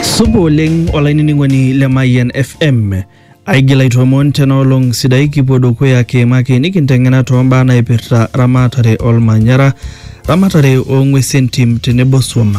supa oleng olainining'oni le mayian fm aigil aitoomon tena olong sidai kipuo dukuya kiimaki nikinteng'ena toombaa naipirta ramatare olmanyara ramatare oong'uesi entim tenebo swam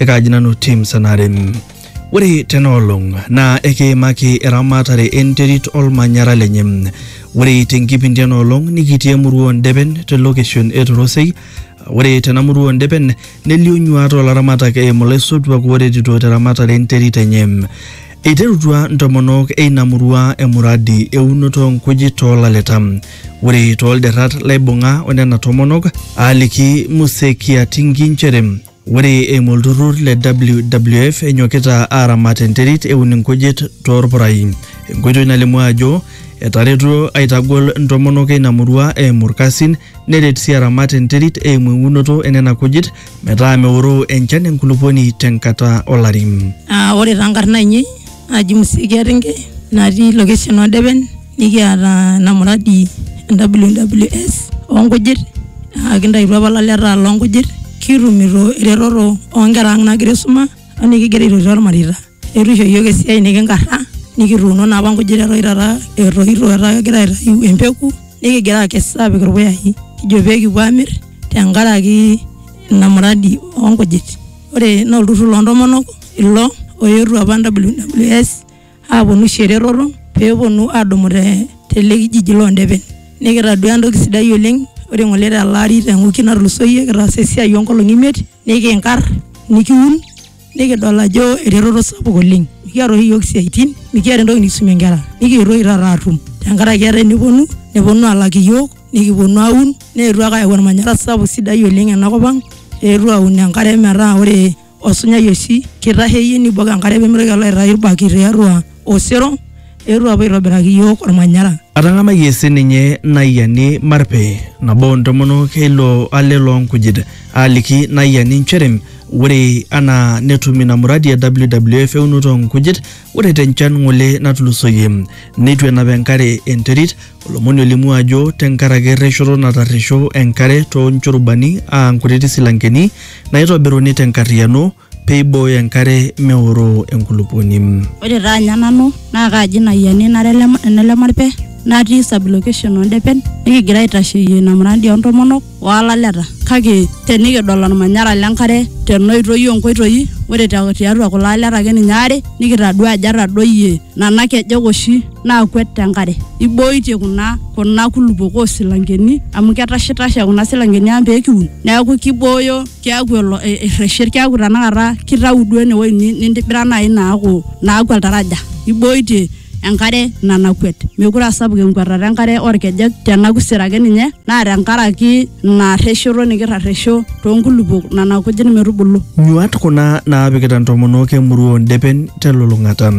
ekaaji nanu tim sanare ore tena olong naa ekiimaki eramatare enterit olmanyara lenye ore tenkipindi ena olong nikitii emurua ondepen te location e torosei Ore tena murua ondepen nelio nyuaat olaramatak eimu laisotuak ooretito teramatare enterit enye. Eiterutua ntomonok eina murua emuradi eunoto oo nkujit too laleta. Ore too lderrat laibung'a onena tomonok aaliki Muse Kiatingi nchere. Ore eimu olturrur le WWF enyokita aaramat enterit eun inkujit toorpurai. Enkoitoi nalimu ajo etaretuo aitagol ntomonok eina murua eimu ilkasin neret sii aramat enterit eimu eunoto enena kujit metaa meoroo enchan enkulupuoni tenkata olari. Ore taa nkarn aainei naji Musikia Ringe natii location Odepen nikiata ina muradi e WWS oo nkujit naa kintaituo apa ilaleta loo nkujit kitumito eretoto oo nkera ang' naagira aisuma o nekigira aitoti ormareita. Etu isho iyiok esiai nekinkarra nikituuno naa apa nkujit eton taata etoito etaa kegira aitayu empeku nekigira aakes aapik irpuyai kijo pee kipuo aamir tenkaraki ina muradi oo nkujit. ore naa olturrur loontomonok ilo oetuo apa WWS aponu aisho eretoto peeponu adumu te tele kijiji londepen nikitadua entoki sidai oleng ore ng'ole tele ari te wiki natulusoyie kitaasa esiai onkolong'i imiet nikinkarr nikiun nikidol ajo eretoto sapuk oleng mikiata oshi iyiok isiaitin mikiata entoki nikisumie inkera nikietuo oshi taata atum tenkaraki etaa eneponu neponu alak iyiok. nikiponu aun neetuo ake ayau ormanyara sapuk sidai oleng ena kop ang eetuo aun enkare metaa ore osunyai oshi kitasheyie nibok enkare pemitoki alo aitayu irbaki tiatua osero eetuo apuo aitobiraki iyiok ormanyara. Atang'amayie sininye Naiani Marpe, nabo oo ntomonok e ilo ale loo nkujit, aaliki Naiani nchere ore anaa netum ina muradi e WWF eunoto oo nkujit, ore te nchan ng'ole natulusoyie neitu enap enkare enterit, Olomoni olimu ajo tenkaraki erreshoto natarresho enkare too nchurubani aa nkutiti silankeni naaitobiruni te nkarriyiano pee eibooyo enkare meoroo enkulupuoni. Ore taa anya nanu naa kaaji ina ayiani nara ene Lemarpe natii sub-location oo Ndepen nikigira aitasheyie ina murandi oo ntomonok. olaleta kake tenikidol olmanyara lenkare tenoitoi onkoitoi ore te- tiatua kulo aleta ake ninye aare nikitadua ajo etadoyie nana kejek oshi naakwet tenkare ibooitie kuna kuna kulupok osilankeni amu ketashitashe kuna silankeni ang pekiun neeku kibooyo keeku elo e- erreshet keeku tanakata kitau duo enewoi ni- nintibira naaji naaku naaku oltaraja ibooitie enkare nanakwet. Mekure aa sapuk enkwetata enkare oo ilkejek tena kusero ake ninye naa tenkaraki ina arreshoto nikirresho too nkulupuok nena kujit metubulu. Nyuaat kuna naapikita ntomonok e murua oo ndepen te lulung'ata.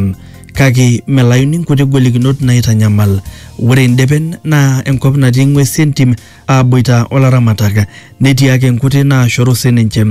Kake melayuni nkuti golikinot naaitanyamal. Ore ndepen naa enkop natii ng'wesi entim aaboita o laramatak netii ake nkuti naashoru sininche.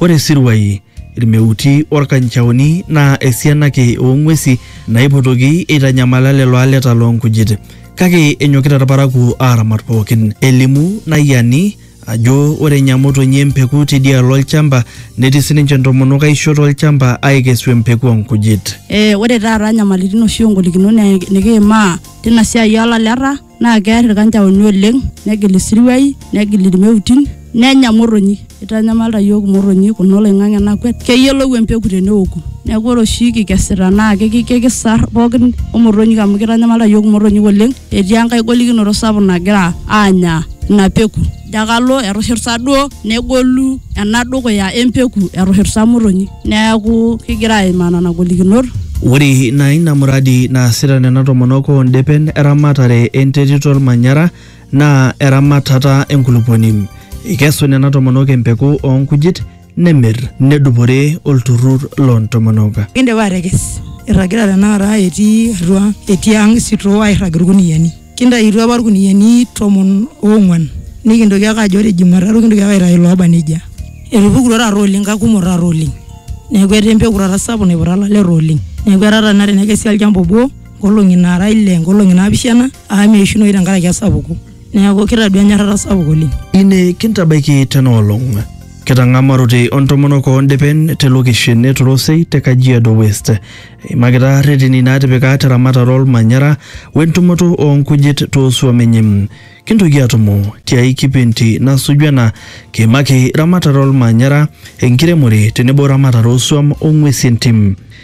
Ore isiruai, ilmeuti o lkanchaoni naa esiana ake oo ng'uesi naipotoki eitanyamala lelo aleta loo nkujit. Kake enyokita ilparakuo aaramat pooki. Elimu Nayiani ajo ore enya motonyi empeku teidialo olchamba netii sininche ntomonok aisho to lchamba aaikesu empeku oo nkujit. Ore taata nyamalitin oshi o ngolikinot nikiimaa teina siai oo laleta. naa kear ilkanjaoni oleng negil isiruai negil ilmeutin nenya motonyi eitanyamalita iyiook imotonyi kuna oloing'ang'e nakwet keyiolou empeku teneoku neeku ore oshi kikesita naa kiki- kikisar pookin omotonyik amu keitanyamalita iyiook imotonyik oleng etii enkae golikinoto sapuk nagira aanya ina peku. Jakalo etushurta duo negolu ena dukuya empeku etushurta motonyi. Neaku kigira aimaa nena golikinot. Ore naa ina muradi naasita nena tomonok oo ndepen eramatare enterit olmanyara naa eramatata enkulupuoni. Eikesu nena tomonok empeku oo nkujit, nemir nedupore olturrur loo ntomonok. Kindipa atekes, irragita tenakata etii atua etii ang isitoo airrag ilkuniyiani. Kintaituo apa ilkuniyiani tomon oong'uan nikintoki ake ajo ore jumatatu kintoki ake aitayu ilooba nejia. Etupukutuo taata oleng kakumok taata oleng. Neeku etaa empeku taata sapuk naiputa ilaleta oleng. Neeku etaa taata tenakata tenekesi olchamba obo nkolong'i naara ile nkolong'i naapishana amu meishunoyu tenkaraki esapuko. Neeku kitadua enyorrata sapuk oleng. Ine kintabaiki tena olong. Ketang'amarote o ntomonok oo ndipen te lokeshen e Torosei te Kajiado West. Eimakita reteni naatipika te ramatare olmanyara o entumoto oo nkujit too suam enye. Kintoki aatumo ti ai kipindi nasuju ena kiimaki ramatare olmanyara, enkiremore tenebo ramatare oo suam o ng'uesi entim.